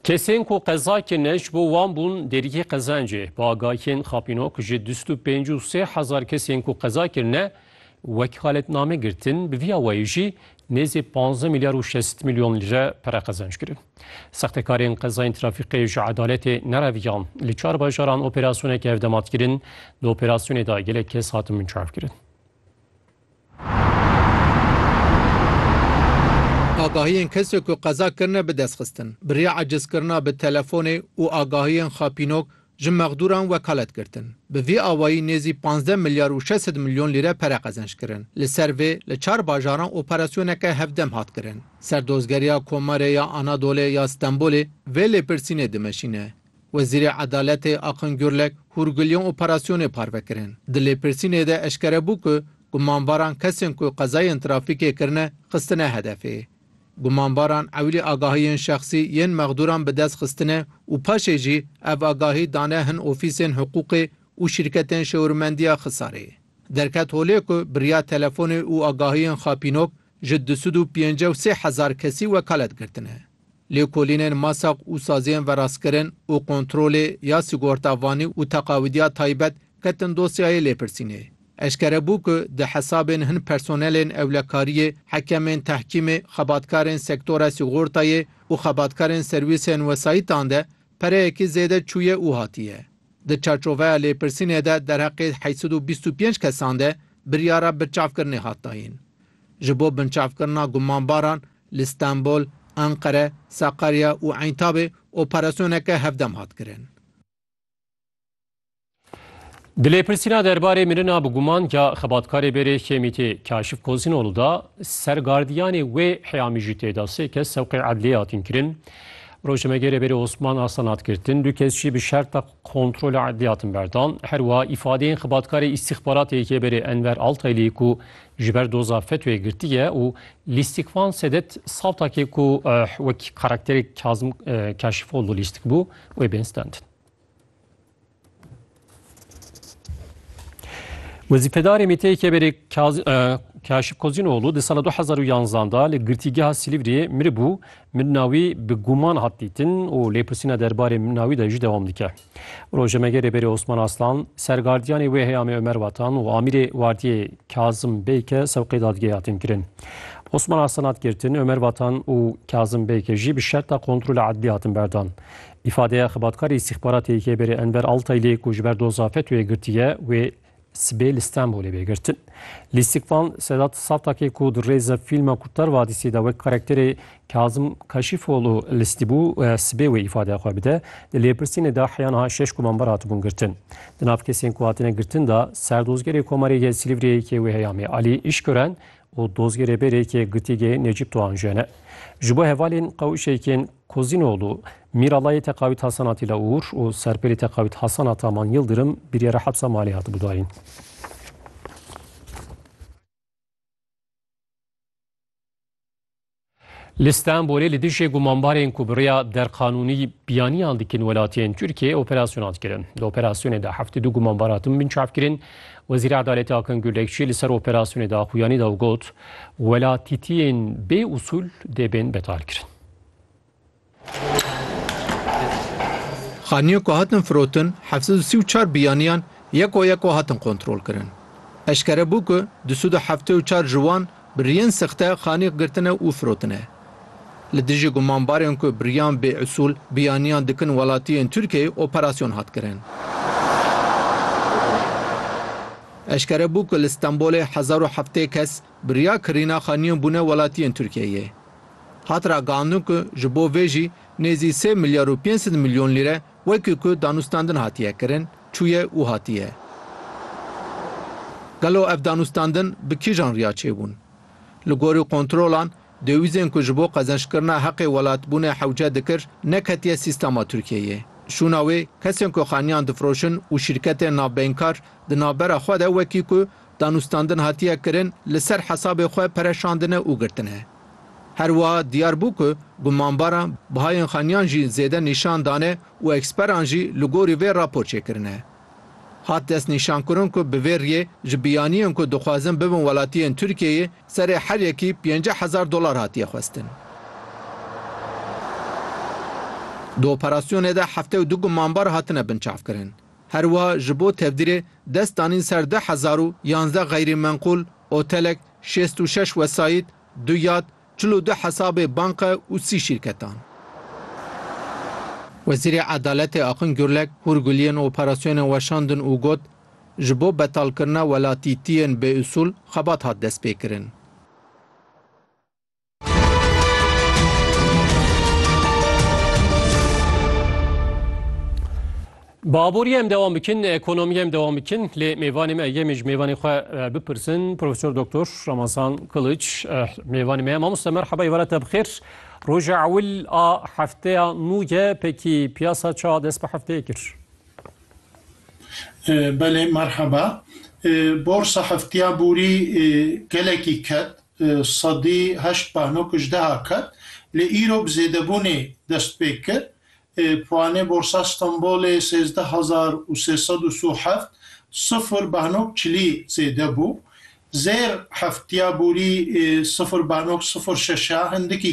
Kesên ku qeza kirine ji bo wan bûn derîkê qezencê. Bi agahiyên xapîno ku ji dust û pênc û sê hezar kesên ku qeza kirine wekîaletname girtin, bi vîya wayî jî nêzî panzdeh milyar û şezt milyon lîre pere qezenc kirin. Sextekarên qezayên trafîkê ji edaletê nereviyan. Li çar bajaran operasyoneke hevdemat kirin. Di operasyonê de gelek kes hatin binçavkirin. Agahiyên kesê ku qeza kirine bi destxistin, bi rê ecizkirina bi telefonê û agahiyên xapînok ji mexdûran wekalet girtin. Bi vî awayî nêzî pazdeh milyar û şeş sed milyon lîre pere qezenc kirin. Li ser vê li çar bajaran operasyoneke hevdem hat kirin. Serdozgeriya Komarê ya Anadolê ya Stenbolê vê lêpirsînê dimeşîne, Wezîrê Edaletê Akın Gürlek hûrgiliyên operasyonê parve kirin. Di lêpirsînê de eşkere bû ku gumanbaran kesên ku qezayên trafîkê kirine xistine hedefê. Gumanbaran ewilî agahiyên şexsî yên mexdûran bi dest xistine û paşê jî ev agahî dane hin ofîsên hiqûqê û şîrketên şewirmendiya Xisarê. Derket holê ku birya telefonê û agahiyên xapînok ji du sed û pêncî û sê hezar kesî wekalet girtine. Lêkolînên masak û saziyên verastkirin û kontrolê ya sîgorta vanî û teqawîdiya taybet ketin dosyayê lêpirsînê. Eşkere bû ku di hesabên hin personelên ewlekariyê, hekemên tehkîmê, xebatkarên sektora sîgortayê û xebatkarên serwîsên wesayîtan de pereyekî zêde çûye û hatiye. Di çarçoveya lêpirsînê de derheqê heşt sed û bîst û pênc kesan de biryara binçavkirinê hat dayîn. Ji bo binçavkirina gumanbaran Li Stenbol, Enqere, Sakarya û Eyntabê operasyoneke hevdem hat kirin. Di lêpirsîna derbarê mirina bi guman ya xebatkarê bêrê Hêmîtê Kaşif Kozinolu de ser gardiyanê wê heya mijûtê de sê kes sewqê edliyê hatin kirin. Rojnamegêrê bêrê Osman Arslan hat girtin, du kes jî bi şerta kontrola edliyê hatin berdan. Her wiha îfadeyên xebatkarê îstîxbaratê yê bêrê Enver Altaylî ku Ji ber doza fetwê girtiye û Lîstik van Sedet sawtakê ku wekî karakterê Kazim Kaşîfoglû lîstik bû wê bên standin. Wezîfedarê Mîteyê Keberê Kaşif Kozînoglû di sala 2011 da li girtîgeha Silîvriyê miribû, mirina wî bi guman hat dîtin û lêpirsîna derbarê mirina wî de jî dewam dike. Rojnamegerê Berê Osman Aslan, sergardiyanê wê heye Amê Omer Watan û amîrê wardiyê Kazim Beyke sewqê dadgehê hatin kirin. Osman Aslan hat girtin, Omer Watan û Kazim Beyke jî bi şerta kontrola edlî hatin berdan. Îfadeya xebatkarê îstîxbaratê YKB'ê Enver Altayli ku ji ber doza FETÖ'yê girtiye wê sibê li Stenbolê bê girtin. Lîstikvan Sedat Satakê ku di rêza fîlma Kurtar Vadîsî de wek karakterê Kazim Kaşîfoğlu listî bû, sibê wê îfadeya xwe bide. Di lêpirsînê de heya niha şeş komamber hatibûn girtin. Di nav kesên ku hatine girtin de, Serdozgerê Komarê yê Silîvriyê yê wê heyamê Alî Îşkören û dozgê rêberê yê Gitigê Necîp Doğan jî hene. Ji bo hevalên qewişek yên Kozînoğlu, Mîralayê Teqawît Hasan Atîla Uğur û Serpêlê Teqawît Hasan Ataman Yildirim biryara hepsa malê hatibû dayîn. Li Stenbolê li dijî gumanbarên ku bi rêya derqanûnî biyaniyan dikin welatiyên Tirkiyeyê operasyonan dikirin. Di operasyonê de heftê du gumanbar hatin binçav kirin. Wezîrê Edaletê Akin Gulekçî li ser operasyonê de axuyanî da û got, Welatîtiyên bê usûl dê bên betalkirin. Xaniyan ku hatin firotin heft sed û sî û çar biyaniyan yeko yeko hatin kontrolkirin. Eşkere bû ku du sed û heftê û çar ji wan bi riyên sexte xanîx girtine û firotine. Li dijî gumanbarên ku bi riyan bêusûl biyaniyan dikin welatiyên Tirkiyeyê operasyon hat kirin. Eşkere bû ku li Stenbolê hezar û heftê kes Bi riya kirîna xwe nîyo bûne welatiyên Tirkiyeyê. Hat ragihandin ku ji bo vê jî nêzî sê milyar û pênc sed milyon lîre wekî ku danûstandin hatiye kirin çûye û hatiye. Gelo ev danûstandin bi kîjan riya çêbûn? Li gorî kontrolan, dewîzên ku ji bo qezençkirina heqê welatbûnê hewce dikir neketiye sîstema Tirkiyeyê. Şûna wê, kesên ku xaniyan difiroşin û şîrketên navbeynkar di navbera xwe de wekî ku Danûstandin hatiye kirin li ser hesabê xwe pere şandine û girtine. Her wiha diyar bû ku gumanbaran bihayên xaniyan jî zêde nîşan dane û eksperan jî li gorî vê rapor çêkirine. Hat destnîşankirin ku bi vê riyê ji biyaniyên ku dixwazin bibin welatiyên Tirkiyeyê serê her yekî pênceh hezar dolar hatiye xwestin. Di operasyonê de heftê û du gumanbar hatine binçavkirin. Her wiha ji bo tevdîrê dest danîn ser du hezar û yanzdeh xeyrî menqûl, otelek, şêst û şeş wesayît, du yat, çil û du hesabê banke û sî şîrketan. Wezîrê Edaletê Axin Gurlek hûr guliyên operasyonê weşandin û got, Ji bo betalkirina welatîtiyên bêusûl xebat hat destpêkirin. Baborî em dewam bikin, ekonomî em dewam bikin lê mêvanê me yemê ji mêvanê xwe e, bipirsin Profesor Doktor Ramazan Kiliç e, mêvanê me mamoste merheba êvara te bixêr. Roja ewil a hefteya nû ye pekî piyasa ça dest bi hefteyê kir. Belê merheba. Borsa heftiya borî gelekî ket Sedî heşt behnok ijdeha ket, lê îro bi zêdebûnê dest pê kir. Puanê Borsa Stenbolê sêzdeh hezar û sê sed û sû heft, sifir behnok çilî zêde bû. Zêr heftiya borî sifir behnok sifir şeşa hindikî.